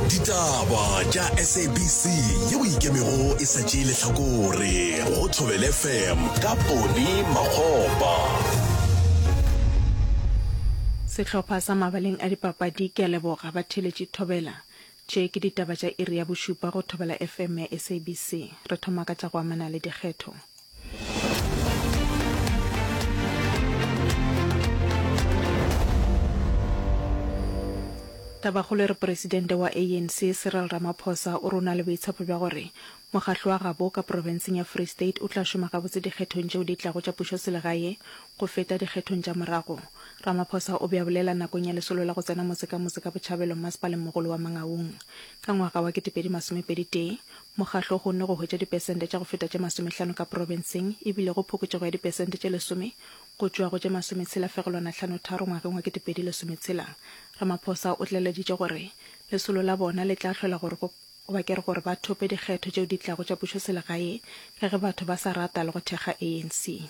ditaba tša sabc yeo ikemego e sa tšee lehlakore go thobel fm ka pone magopa sehlopha sa mabaleng a dipapadi ke a leboga ba theletše thobela tše ke ditaba tša iri ya bošupa go thobela fm ya sabc re thoma ka tša go amana le dikgetho Tabakgolo e re Presidente wa ANC Cyril Ramaphosa o re o na le boitshepo bja gore mokgahlo wa gabo ka profenseng ya Free State o tla šoma gabotse dikgethong tšeo di tlago tša pušoselegae go feta dikgethong tša morago. Ramaphosa o be a bolela nakong ya lesolo la go tsena motse ka motse ka Botšhabelo Mmasepaleng mogolo wa Mangaung ka ngwaga wa 2021 Mokgatlo o kgonne go hwetša dipesente tša go feta tše masomehlano ka profenseng e bile go phokotšego ya dipesente tše lesome go tšoa go tše masometshela fegelwana hlano tharo ngwageng wa ketepedi lesometshela. Ramaphosa o tlaleleditše gore lesolo la bona le tla hlola gore go ba kere gore ba thope dikgetho tšeo di tlago tša pušoselegae ka ge batho ba sa rata le go thekga ANC.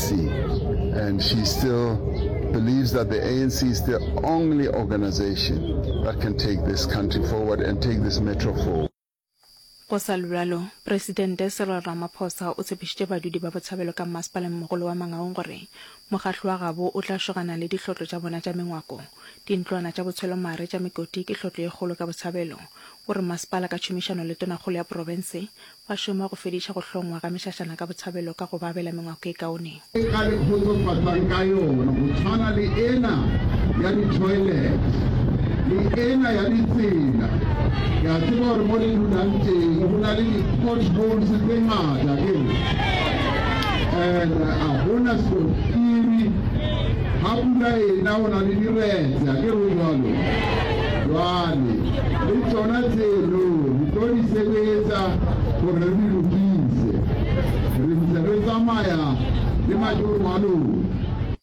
and she still believes that the ANC is the only organization that can take this country forward and take this metro forward. Go sa le bjalo, Presidente Cyril Ramaphosa o tshepišitše badudi ba Botshabelo ka mmasepaleng-mogolo wa Mangaung gore mokgatlo wa gabo o tla šogana le dihlotlo tša bona tša mengwako, dintlwana tša botshwelomare tša mekoti ke hlotlo ye kgolo ka Botshabelo. O re masepala ka tšhomišano le tonakgolo ya profense Ba šoma go fediša go hlongwa ga mešašana ka botshabelo ka go ba abela mengwako e kaone. e ka le khotsofatsang ka yona, go tshwana le ena ya di-toilet le ena ya ditsela. Ke a tseba gore mo le dulang teng go na le di-potholes tse ngata, akere? And a gona skontiri, ga pula ena go na le diretse, akere o jalo? Jwale. Bjale, le tšona tseno re tlo di sebetsa gore re di lokise. Re ntse re tsamaya le matoro a lona.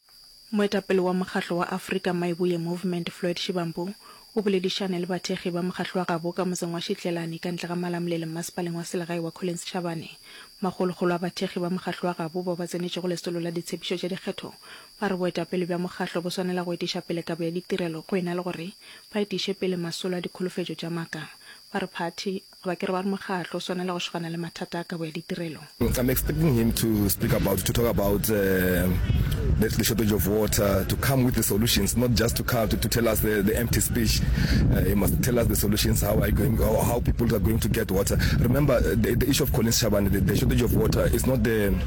Moetapele wa mokgatlo wa Afrika Maibuye Movement Floyd Shivambu o boledišane le bathekgi ba mokgatlo wa gabo ka motseng wa Shitlelani ka ntle ga Malamulele mmasepaleng wa selegae wa Collins Chabane. Makgolokgolo a bathekgi ba mokgatlo wa gabo bao ba tsenetšego lesolo la ditshepišo tša dikgetho Ba re boetapele bja mokgatlo bo swanela go etiša pele kabo ya ditirelo go e na le gore ba etiše pele masolo a dikholofetšo tša maaka. Ba re phathi, goba ke re ba re mokgatlo, o swanela go šogana le mathata a kabo ya ditirelo. I'm expecting him to speak about, to talk about the the shortage of water, to come with the solutions, not just to come to tell us the empty speech. He must tell us the solutions, how are you going, how people are going to get water. Remember the the issue of Collins Chabane, the the shortage of water is not the.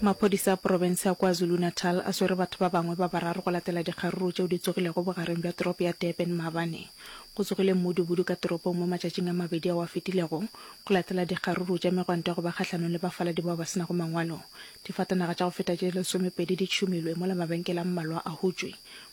Maphodisa a profense ya KwaZulu-Natal a swere batho ba bangwe ba bararo go latela dikgaruru tšeo di tsogilego bogareng bja toropo ya Durban maabane. Go tsogile mmudubudu ka toropong mo matšatšing a mabedi ao a fetilego go latela dikgaruru tša megwanto ya go ba kgahlanong le bafaladi bao ba se nago mangwalo. Difatanaga tša go feta tše lesomepedi di tšhumilwe mola mabenkele a mmalwa a hutšwe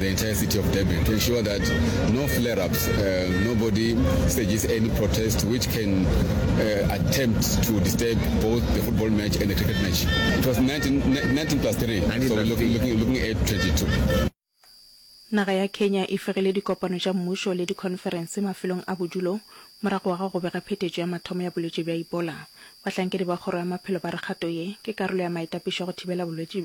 the entire city of Durban to ensure that no flare-ups, uh, nobody stages any protest which can uh, attempt to disturb both the football match and the cricket match. It was 19, 19 plus 3, 19 so we're looking, looking, looking at 22. Naga ya Kenya e fegile dikopano tša mmušo le dikhonferense mafelong a bodulo morago ga go bega phetetšo ya mathomo ya bolwetši bja Ebola. Bahlankedi ba kgoro ya maphelo ba re kgato ye ke karolo ya maetapišo go thibela bolwetši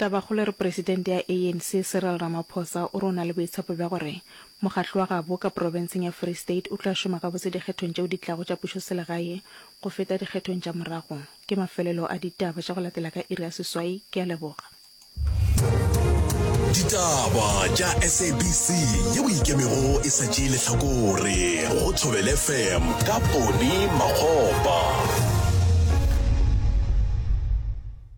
Tabakgolo e re Presidente ya ANC Cyril Ramaphosa o re o na le boitshepo bja gore mokgatlo wa gabo ka profenseng ya Free State o tla šoma gabotse dikgethong tšeo di tlago tša pušoselegae go feta dikgethong tša morago. Ke mafelelo a ditaba tša go latela ka iri ya seswai. Ke a leboga. Ditaba tša SABC yeo e ikemego e sa tšee lehlakore go Thobela FM ka Ponny Makgopa.